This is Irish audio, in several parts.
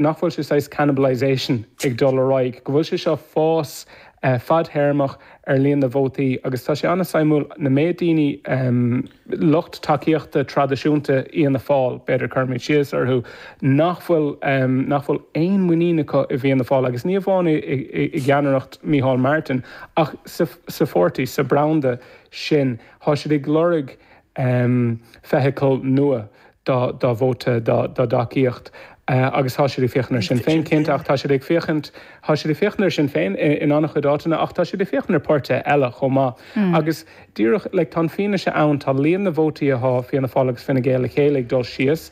nach bhfuil sé saghas cannibalisation ag dul ar aghaidh, go bhfuil sé seo fás fad-théarmach ar líon na vótaí agus tá sé an-suimiúil na méid daoine, lucht tacaíochta traidisiúnta Fhianna Fáil, b'fhéidir, cuirfimid síos orthu, nach bhfuil, nach bhfuil aon mhuinín acu i bhFianna Fáil agus ní amháin i gceannaireacht Micheál Martin ach sa pháirtí, sa branda sin. Tá siad ag lorg. feithicil nua dá vóta, dá dtacaíocht agus tá siad ag féachaint ar Sinn Féin, cinnte, ach tá siad ag féachaint, tá siad ag féachaint ar Sinn Féin in an-chuid áiteanna ach tá siad ag féachaint ar páirtithe eile chomh maith agus díreach, like, tá an fianaise ann, tá líon na vótaí atá ag Fianna Fáil agus Fine Gael le chéile ag dul síos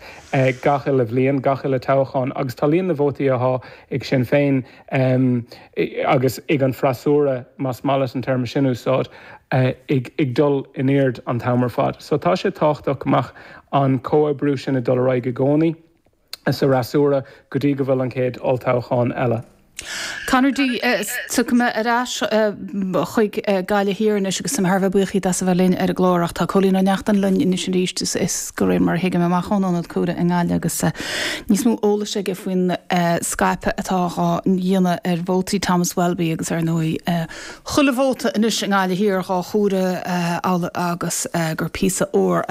gach uile bhliain, gach uile toghchán agus tá líon na vótaí atá ag Sinn Féin. agus ag an bhfreasúra, más maith leat an téarma sin a úsáid, ag dul in airde an t-am ar fad. So tá sé tábhachtach go mbeadh an comhoibriú sin ag dul ar aghaidh i gcónaí sa fhreasúra go dtí go bhfuil an chéad olltoghchán eile. Conor D, Tiocfaidh mé ar ais chuig Gaillimh Thiar anois agus tá mé thar a bheith buíoch díot as a bheith linn ar an gclár ach tá Cóilín Ó Neachtain linn anois arís is de réir mar a thuigim, amach ón ionad comhairimh i nGaillimh agus níos mó eolais aige faoin scaipeadh atá dhá dhéanamh ar vótaí Thomas Welby agus, ar ndóigh, chuile vóta anois i nGaillimh Thiar dhá chomhaireamh amhail agus gur píosa óir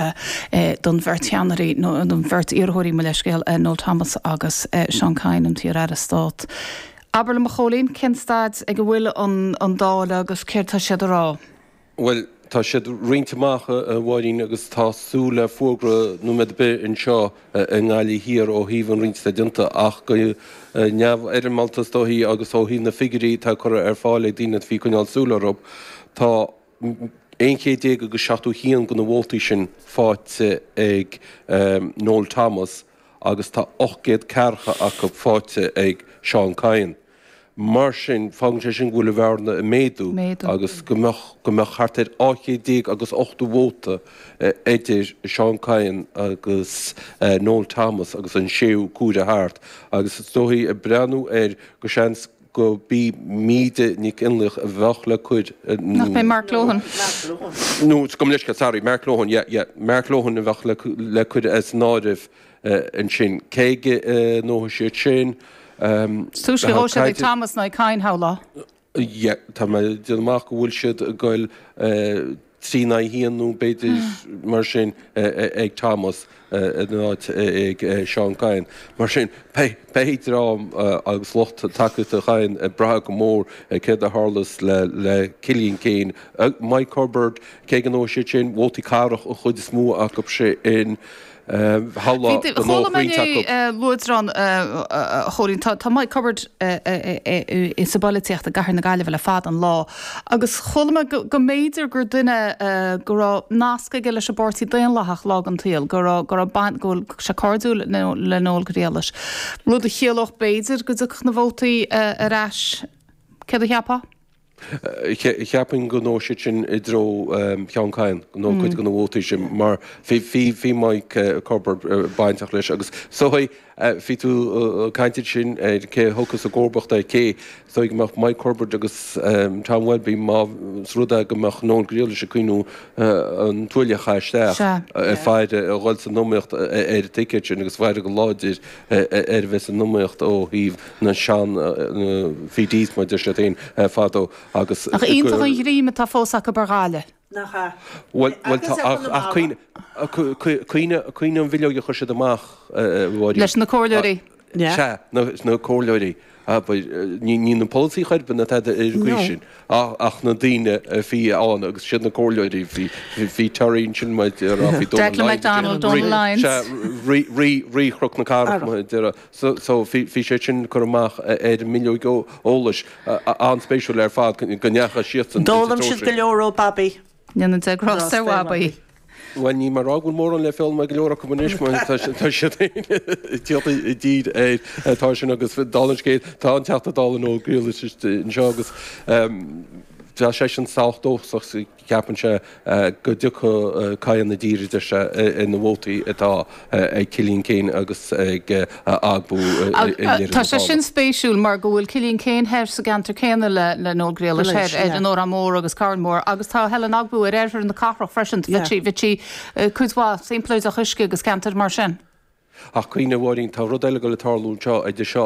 é don bheirt cheannairí, nó don bheirt iarrthóirí, mo leithscéal, Noel Thomas agus Seán Kyne, an t-iar-aire stáit. Abair liom, a Chóilín, cén staid ag a bhfuil an dáileadh agus céard tá siad a rá? Bhuel, tá siad roinnte amach, a Mháirín, agus tá súil le fógra nóiméad ar bith anseo i nGaillimh Thiar ó thaobh an roinnt atá déanta ach go neamhfhoirmeálta is dóichí agus ó thaobh na figiúirí atá curtha ar fáil ag daoine a bhí ag coinneáil súil orthu, tá aon chéad déag agus seachtó haon de na vótaí sin faighte ag Noel Thomas agus tá ocht gcéad ceathracha acu faighte ag Seán Kyne. Mar sin, fágann sé sin go bhfuil an bhearna ag méadú agus go mbeadh thart ar 12 chéad agus 80 vóta idir Seán Kyne agus Noel Thomas agus an séú comhaireamh thart agus is dóichí, ag breathnú air, go seans gurb í Míde Nic Fhionnlaoich a bheadh le cur in Nach é Mark Lohan? Nó, gabh mo leithscéal, sorry, Mark Lohan, yeah, yeah, Mark Lohan a bheadh le cur as an áireamh. ansin, cé aige a ngabhfaidh siad sin. Túisce a ghabhfaidh siad ag Thomas ná ag Kyne, shamhlóinn. Tá mé ag déanamh amach go bhfuil siad ag goil trí in aghaidh a haon nó b'fhéidir mar sin ag Thomas in áit ag Seán Kyne. Mar sin, beidh dream agus lucht tacaíochta Kyne ag brath go mór ar céard a tharlós le Cillian Keane, Mike Cubbard, cé aige a ngabhfaidh siad sin vótaí cathrach an chuid is mó acu sin, Chuala mé inniu luaidreán, a Chóilín. Tá Mike Cubbard sa bpolaitíocht i gcathair na Gaillimhe le fada an lá agus chuala mé go mb'fhéidir gur duine go raibh nasc aige leis an bPáirtí Daonlathach lá den tsaol, go raibh, go raibh baint, go bhfuil sé cairdiúil le Noel Grealish. Rud a chiallódh b'fhéidir go dtiocfadh na vótaí ar ais, céard a cheapfá? Cheapfainn go ngabhfadh siad sin i dtreo Sheán Kyne, nó cuid de na vótaí sin, mar bhí Mike Cubbard bainteach leis agus bhí tú ag caint ansin ar cé a thiocfadh sa gcomharbacht OK, so go mbeadh Mike Cubbard agus Tom Welby, más rud é go mbeadh Noel Grealish ag cuimhniú an tuáille a chaitheamh isteach ar dhul san iomaíocht ar an ticéad sin agus bheadh siad go láidir. ar bheith san iomaíocht ó thaobh na sean-PDs, mar a deir siad féin, fadó agus go. Nach iontach an ghreim atá fós acu ar Ghaillimh. Nach ea. Bhuel, tá, ach cuimhnigh an bhileog a chuir siad amach, a Mháirín. Leis na comhairleoirí. Sea, na comhairleoirí. Abair, ní na polasaithe Chorbyn atá ar an gcaoi sin, ach na daoine a bhí ann agus siad na comhairleoirí. Bhí Terry ansin, mar a déarfá, bhí Donal Lyons, rí Chnoc na Cathrach, mar a déarfá. So, bhí sé sin curtha amach ar an mbileog eolais, an-spéisiúil ar fad go ndeachaigh siadsan ins an dtreo sin. D'fhoghlaim siad go leor ó Bobby. Go ndéana Dia grásta ar Bobby. Bhuel, níl mé ag rá go bhfuil mórán le foghlaim ag go leor acu anois mar tá siad ag tíocht i dtír air. Tá sin agus dála an scéil, tá an Teachta Dála Noel Grealish anseo agus tá seisean sách dóchasach, ceapann sé, go dtiocfaidh Kyne i dtír idir seo agus na vótaí atá ag Cillian Keane agus ag Ogbu i ndeireadh na dála. Tá sé sin spéisiúil mar go bhfuil Cillian Keane thoir sa gceantar céanna le Noel Grealish, thoir ar an Órán Mór agus Carn Mór, agus tá Helen Ogbu ar oirthear na cathrach freisin, thit sí cuid mhaith, sampla Dabhach Uisce agus ceantair mar sin. Ach cuimhnigh, a Mháirín, tá rud eile ag goil ag tarlú anseo, idir seo